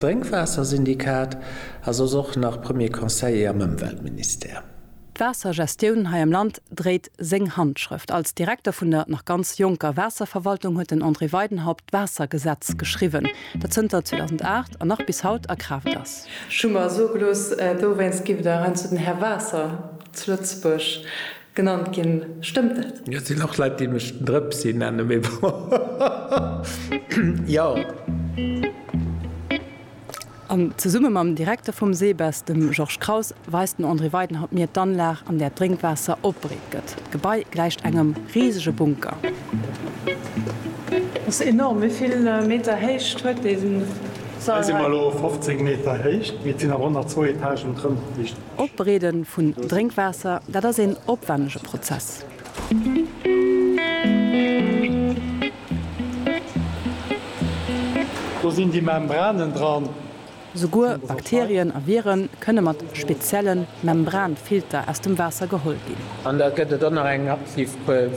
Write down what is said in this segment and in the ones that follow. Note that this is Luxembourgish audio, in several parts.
Drénkwaassersyndikat a soss och nach Premier Conseiller am Ëmweltministère. D'Waassergestioun hei am Land dréit seng Handschrëft. Als Direkter vun der nach ganz jonker Waasserverwaltung huet den André Weidenhaupt d'Waassergesetz geschriwwen, dat zënter 2008 an nach bis haut a Kraaft ass. Ech hu mer soe gelooss, dowéinst giff der heiansdo den Här Waasser zu Lëtzebuerg Genannt ginn, stëmmt dat? Et sinn och Leit déi mech den Drëpsi nennen, mee bon, jo. An zesumme mam Direkter vum SEBES, dem Georges Kraus, weist den André Weidenhaupt mir d'Anlag, an där d'Drénkwaasser opbereet gëtt. D'Gebai gläicht engem risege Bunker. Dat ass enorm. Wéi vill Meter Héicht huet dee Sall hei? Hei si mer elo op 15 Meter Héicht, mee et sinn nach 102 Etagen drënner. Opbereede vun Drénkwaasser, dat ass een opwännege Prozess. Do sinn déi Membranen dran. Souguer Bakterien a Viren kënne mat spezielle Membranfilter aus dem Waasser geholl ginn. An da gëtt et och nach eng aktiv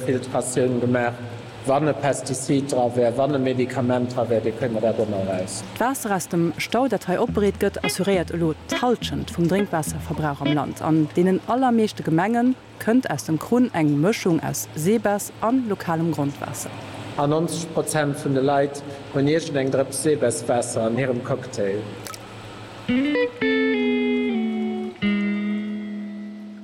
Filtratioun gemaach. Wann e Pestizid dra wär, wann e Medikament dra wär, dee kënne mer dat ëmmer eraus. D'Waasser aus dem Stau, dat hei opbereet gëtt, assuréiert elo d'Halschent vum Drénkwaasserverbrauch am Land. An deenen allermeeschte Gemenge kënnt aus dem Krunn eng Mëschung aus Seebess a lokalem Grondwaasser. A 90 Prozent vun de Leit hunn iergend eng Drëps Seebesswaasser an hirem Cocktail.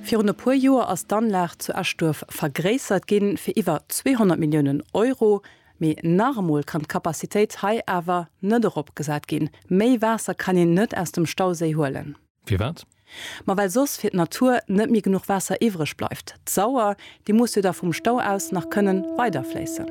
Virun e puer Joer ass d'Anlag zu Eschduerf vergréissert ginn, fir iwwer 200 Milliounen Euro. Mee nach emol kann d'Kapazitéit hei awer net eropgesat ginn. Méi Waasser kann een net aus dem Stauséi huelen. Firwat? Ma well soss fir d'Natur net méi genuch Waasser iwwreg bleift. D'Sauer Déi muss jo da vum Stau aus nach kënnen weiderfléissen.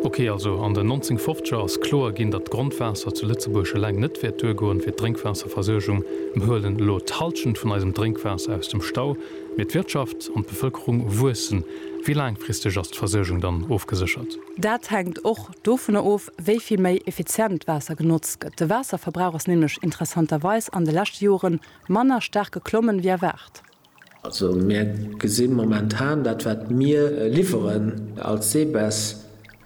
Ok, also an den 1950er ass kloer ginn, datt d'Grondwaasser zu Lëtzebuerg eleng net wäert duergoen, fir d'Drénkwaasserversuergung. Mir huelen elo d'Hallschent vun eisem Drénkwaasser aus dem Stau, mee d'Wirtschaft an d'Bevëlkerung wuessen. Wéi laangfristeg ass d'Versuergung dann ofgeséchert? Dat hänkt och dovunner of, wéi vill méi effizient d'Waasser genotzt gëtt. De Waasserverbrauch ass nämlech interessanterweis an de leschte Jore manner staark geklommen, wéi erwaart. Also mir gesinn momentan, dat wat mir liwweren als Seebes,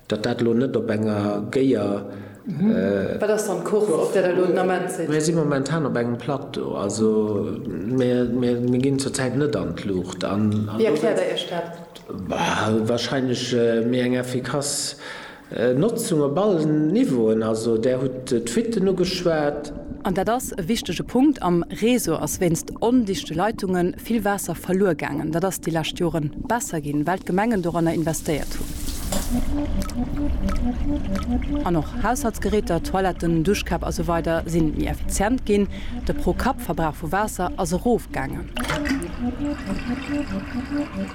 datt dat elo net op enger géier. Wat ass dann d'Courbe, op där Der elo den Ament sidd? Mir si momentan op engem Plateau. Also mir ginn zur Zäit net an d'Luucht. Wéi erkläert Der Iech dat? Wahrscheinlech méi eng effikass Notzung op allen Niveauen, also Där hutt d'Fuitten ugeschwat. An dat ass e wichtege Punkt, am Réseau ass wéinst ondichte Leitunge vill Waasser verluer gaangen. Dat ass déi lescht Jore besser ginn, well d'Gemengen doranner investéiert hunn. An och Haushaltsgeräter, Toiletten, Duschkäpp a sou weider sinn méi effizient ginn. De Pro-Kapp-Verbrauch vu Waasser ass erofgaangen.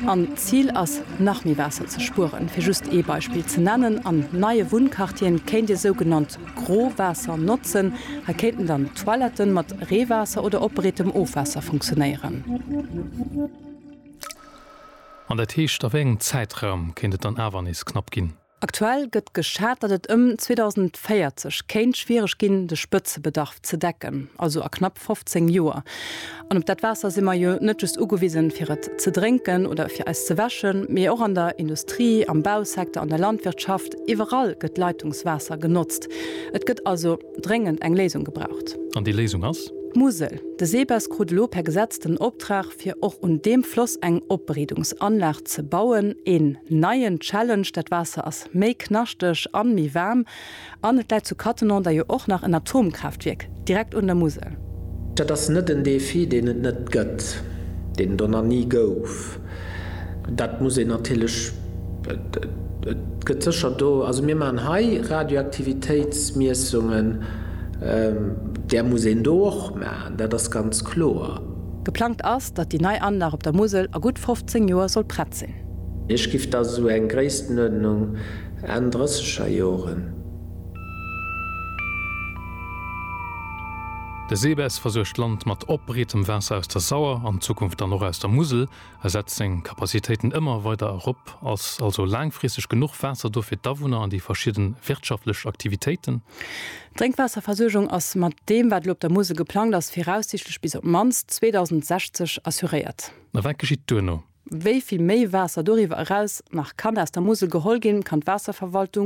An d'Zil ass nach méi Waasser ze spueren. Fir just ee Beispill ze nennen, An neie Wunnquartiere kéint Dir sougenannt Growaasser notzen. Hei kéinten dann d'Toiletten mat Reewaasser oder opbereetem Ofwaasser funktionéieren. An dat heescht, a wéi engem Zäitraum kéint et dann awer nees knapp ginn? Aktuell gëtt geschat, datt et ëm 2040 kéint schwiereg ginn, de Spëtzebedarf ze decken, also a knapp 15 Joer. An op dat Waasser si mer jo net just ugewisen, fir et ze drénken oder fir eis ze wäschen, mee och an der Industrie, am Bausecteur, an der Landwirtschaft, iwwerall gëtt Leitungswaasser genotzt. Et gëtt also. dréngend eng Léisung gebraucht. An déi Léisung ass? D'Musel. De SEBES krut elo per Gesetz den Optrag, fir och un deem Floss eng Opbereedungsanlag ze bauen. Een neien Challenge, dat Waasser ass méi knaschteg an méi waarm. An et läit zu Cattenom da jo och nach en Atomkraaftwierk direkt un der Musel. Dat ass net en Défi, deen et net gëtt, deen et och nach ni gouf. Dat muss een natierlech, et gëtt sécher do, also mir maachen hei Radioaktivitéitsmiessungen, där muss een do och maachen, dat ass ganz kloer. Geplangt ass, datt déi nei Anlag op der Musel a gutt 15 Joer soll prett sinn. Ech giff da sou eng Gréisstenuerdnung Enn drësseger Joren. De SEBES versuergt d'Land mat opbreetem Waasser aus der Sauer, an Zukunft dann och aus der Musel, a setzt seng Kapazitéiten ëmmer weider erop. Ass also laangfristeg genuch Waasser do fir d'Awunner an déi verschidde wirtschaftlech Aktivitéiten? D'Drénkwasserversuergung ass mat deem, wat elo op der Musel geplangt ass, viraussiichtlech bis op d'mannst 2060 assuréiert. A wat geschitt duerno? Wéi vill méi Waasser doriwwer eraus nach kann aus der Musel geholl ginn, kann d'Waasserverwaltung